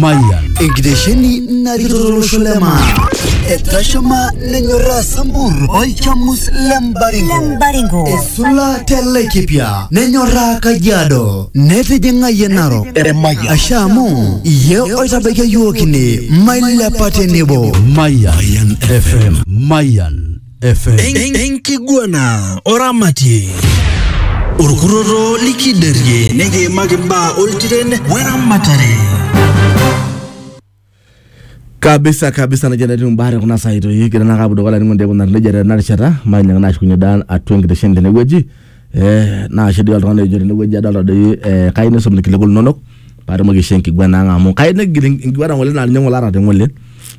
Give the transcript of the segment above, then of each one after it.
Mayan. Enkitesheni narikito tolosho le maa. Etashama nenyorraa Sambur olchamus le Mbaringo. Esula te Laikipia nenyorraa Kajiado. Netijing'ayie Narok. Asha amu iye oitabaikia iyiook ine mailepa tenebo. Mayan FM. Mayan. FM. En- enkiguana oramatie orkurroto likiderie nikiimaki imbaa oltiren weramatare kabisa kabisa najia natii mbare kuna saitoi kira naa kapudo kala ningo ndekuna nejia tena rishata mainyang nashukunye dan atua enkitesheni tenewueji Eh, naa kedoi oltung'ani ojo tenewueji adolta doi eh, kai nisum irkiliku linonok paatumoki aishoo enkiguana ang amu kai nigil enkiguana ng'ole naa ninye ng'ole aata te ng'ole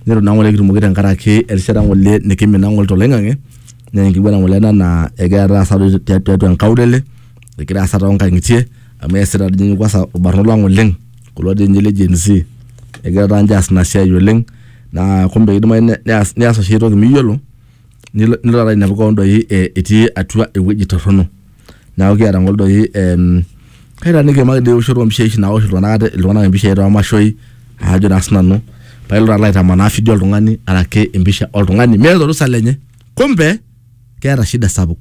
nitu naa ng'ole kitumoki tenkaraki erishata ng'ole nikimina ng'ole toloing'ang'e naa enkiguana ng'ole ena naa egira taasa doi tia- tiatua enkaulele egira aasa tonkang'itie amu eesita dii ninye kwanza irbarnot lang oleng kulo dii ninye le gen z egira taa ninche aas ina siai oleng naa kumbe kidimayu ne- neas neas oshi ae toki miyiolo nilo nilo taata ainepu kewon doi eh, etii atua ewueji torrono neeku kiata ng'ole doi em, kaitaaniki emaki doi ewoshoto ompishai oshi nawosh iltung'anak ate iltung'anak impishai toomashoi aajo naa sinanu paa ilo taata aitamanaa fidio oltung'ani araki empisha oltung'ani meeta orusa lenye kumbe keeta shida sapuk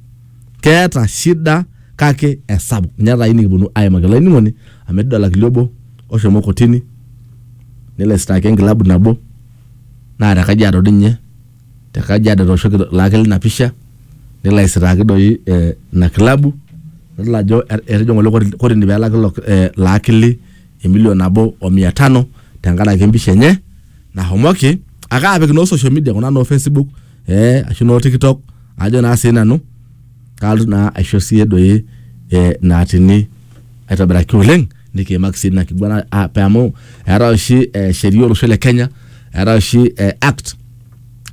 keeta shida kake esapuk ninye taata ayieu nikiponu aimaki olainining'oni amu etii doi olakili obo oshomo kotini nelo aisitaaki enkilabu nabo naa te kajiado doi ninye te Kajiado etooshoki Lakel ina pisha nelo aisitaaki doi eh, ina kilabu nidol ajo et- etejo ng'ole koti- kotini pelaki ilo eh, ilo akili emilion nabo o mia tano tenkaraki empisha enye nahomoki ake apik noo social media kuna noo Facebook eh, ashu noo TikTok ajo naa sii nanu kalotu naa aisho siiyie doi eh, naatini aitobiraki oleng nikiimaki sii ina kiguana ah, pe amu eetae oshi eh, sheria olosho le Kenya eetae oshi eh, act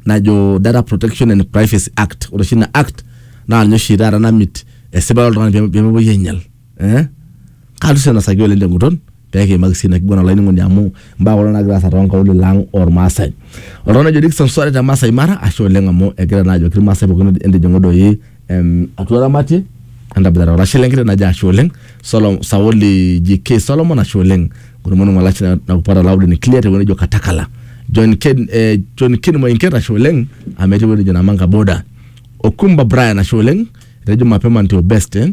najo Data Protection and Privacy Act ore oshi ina act naa ninye oshi taata namit esipata oltung'ani pee- pemepuoi ainyial eh kaata sii enasaki oleng tenguton pekiimaki sii ina kiguana olainining'oni amu imbaa kuna nagira aasa tonkaulele ang ormaasai oltung'ani ojo Dickson Sware te Masai Mara ashe oleng amu egira naa ajoki irmaasai pookin entijing'u doi em atua ramatie entaboitata olashe lenkiteng najo ashe oleng Solo Sauli JK Solomon ashe oleng ng'oru maing'u olashe nakupata loud and clear tewueji nejo Katakala John Ken eh John Ken Moinket ashe oleng amu etii ewueji nejo Namanga border Okumba Brian ashe oleng etejo mapema ndio best eh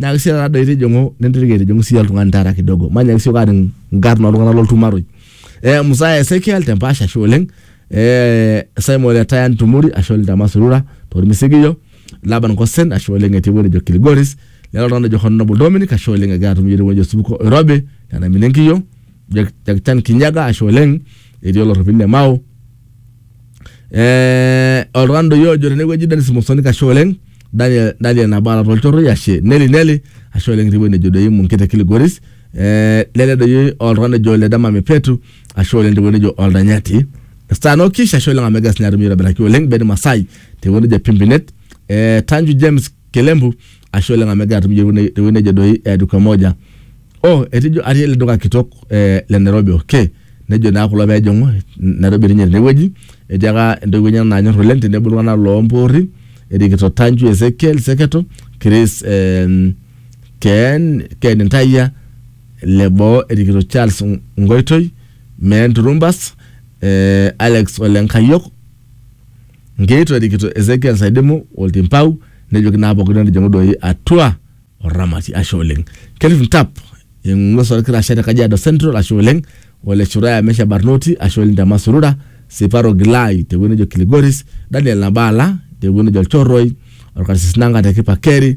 Nyaaki sii taata doi tijing'u nintirik aitijing'u sii oltung'ani taata kidogo. Manyaaki siok aaning nkarn oltung'anak loltumaroi. Eh, Mzaya Ezekiel te Mpaasha ashe oleng. Eh, Simon le Taya Ntumuri ashe oleng te Masurura tormisigiyio. Laban Kosen ashe oleng etii ewueji nejo Kilgoris. Lelo oltung'ani ojo Honorable Dominic ashe oleng egira atum iyiook tewueji nejo Osupuko Oirobi nena Minenkiyio. Jack Chan Kinyaga ashe oleng etii olorropil le Mau. Eh, oltung'ani doi ojo tenewueji Dennis Musoni kashe oleng Daniel, Daniel Nabala tolchorroi ashe Neli Neli ashe oleng etii ewueji nejo doi Munkete Kilgoris eh, lele doi oltung'ani ojo le Dama Mepetu ashe oleng tewueji nejo Oldanyati Stan Okish ashe oleng amu egira sinye atum aitobiraki oleng Ben Masai tewueji nejo Pimpinet eh, Tanju James Kelembu ashe oleng amu egira atum iyiok tewuei- tewuei nejo doi eh, duka moja oh etejo atii ele duka kitok eh, le nairobi okay nejo naa kulo peejing'u nairobi etii ninye tenewueji etii aka intoiwuo enyenak naanyorr oleng tenebo iltung'anak lompoorri erikito Tanju Ezekiel seketo Chris eh, Ken, Ken Ntayia leboo erikito Charles Ng- Ngoitoi Meen Turumbas eh, Alex Ole Nkayiok Nkeito erikito Ezekiel Saidimu oltimpau nejoki naa pooki entijing'u doi atua oramati. Ashe oleng. Kelvin Ntap eng'ues olkirashe te Kajiado Central ashe oleng. Ole Shuraya Mesha Barnoti ashe oleng te Masurura. Siparo Gilai te wueji nejo Kiligoris. Daniel Nabala te wueji nejo Olchorroi. Olkarsis Nanga te Kipakeri.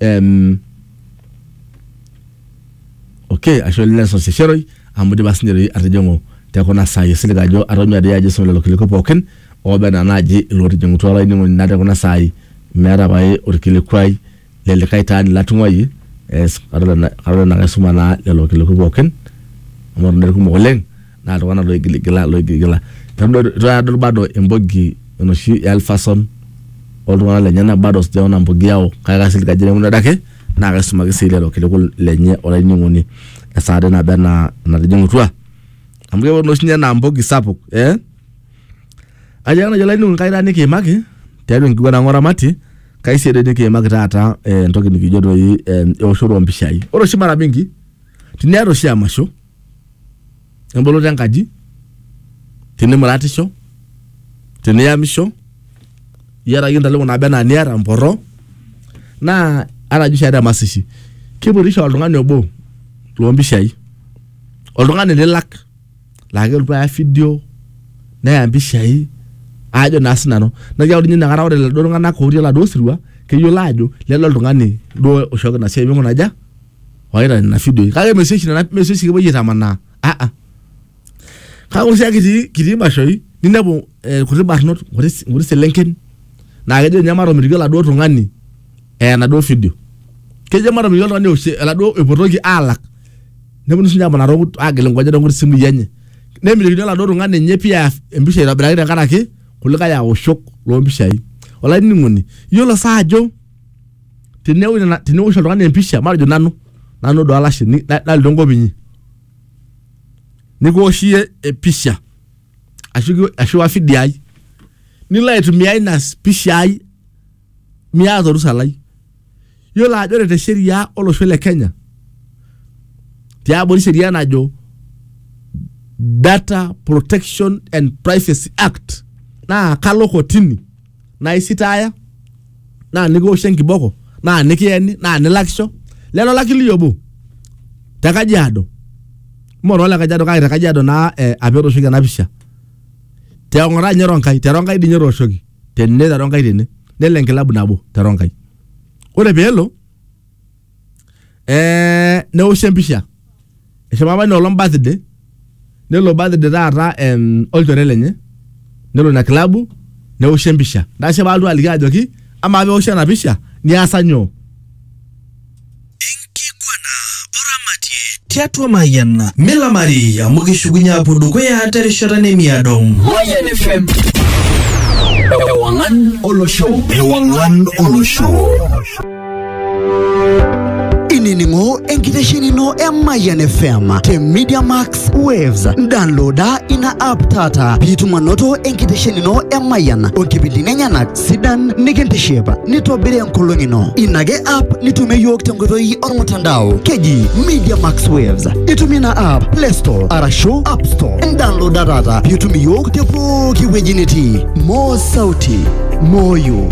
Em, okay ashe oleng nelson sesheroi amu dipa sinye doi atijing'u tekuna saai esilig ajo atonyua doi ajo aisum lelo kiliku pookin ooba enaa naaji ilootijing'utua olainining'oni naa tekuna saai meeta pae orkilikuai le likae taani latung'uayie eh, kadol ena- kadol enaa kaisuma naa lelo kiliku pookin amu eton doi irkumok oleng naa iltung'anak loigiligila loigiligila tadol bado embogi enoshi e Alphason oltung'anak lenyenak bado sijaona mbogi yao kake kaisilig ajo tenemutu adake naa kaisumaki sii lelo kiliku lenye olainining'oni esaa dee naba enaa enatijing'utua amu keponu oshi ninye enaa mbogi sapuk eh ajo ake naaji olainining'oni kai taa nikiimaki tiatua enkiguana ang oramati kai sii doi nikiimaki taata eh, entoki nikijo doi eh, eoshoto ompishai ore oshi mara mingi tiniata oshi emasho emboloto enkaji tinimuratisho tiniyamisho iyata ake intaleng'o naba enaa niata mporro naa ata jio ishaita emasishi kipurisho oltung'ani obo lompishai oltung'ani lilak laa kelotu aya fidio neya impishai ajo naa sinanu neeku ninye inakata ore iladuo tung'anak otii oladuo sirua keyiolo ajo lele oltung'ani duo oishooki ina siai ming'ura aja. waita nena fidioi kake mesioshi nena mesioshi kepuoi aitamanaa ah ah kake ore sii ake kitii kitii imashoi ninepu eh, irkuti barnot nkuti s- nkuti selenken naa kejo ninye matomitiki oladuo tung'ani eya enaduo fidio kejo matomitiki oltung'ani eosh eladuo epotoki alak neponu sinye amanaa tonkut agil inkonyek tonkuti simui enye nemitikini oladuo tung'ani enye pii eya empisha aitobiraki tenkaraki kulikae aoshok lompishai olainining'oni iyiolo sa ajo teneosh nena- teneosh oltung'ani empisha matejo nanu nanu do alashe ni- na- nalotu enkop inyi nikiwosh iyie empisha ashu ki- ashu wa video ai nilo aitumia ina s- pisha ai miata orusa lai yiolo ajo ore te sheria olosho le kenya tiabori sheria najo data protection and privacy act naa kalo kotini naa isitaaya naa nikiwoshi enkiboko naa nikiyeni naa nilakisho lelo laki liyobo te Kajiado mme too le Kajiado kake te Kajiado naa eh, apa etooshoki ena pisha te Ong'ata ninye Ronkai te Ronkai dii ninye etooshoki tene te Ronkai tene nelo enkilabu nabo te Ronkai ore peelo eh, neoshi empisha eshomo apa inoolong birthday nelo birthday taata em, olchore lenye nelo ina klabu neoshi empisha nashe paaltu aliki ajoki amaa peoshi ena pisha niasa nyoo tiatua mayiana milamari amu kishukunye apuo dukuya terishata nemiado Mayan FM. Ewangan Olosho. Ewangan Olosho. inining'o enkiteshenino e Mayian FM te Media Max Waves. Downloada ina app taata piitum anoto enkiteshenino e Mayian onkipindini enyenak sidan nikintiship nitobiri enkolong ino. Ina ake app nitumie iyiook tenkoitoi ormutandao keji Media Max Waves. Itumie ina app Play Store arashu App Store. Downloada taata piitum iyiook te pooki wueji nitii. Moo sauti, moyo.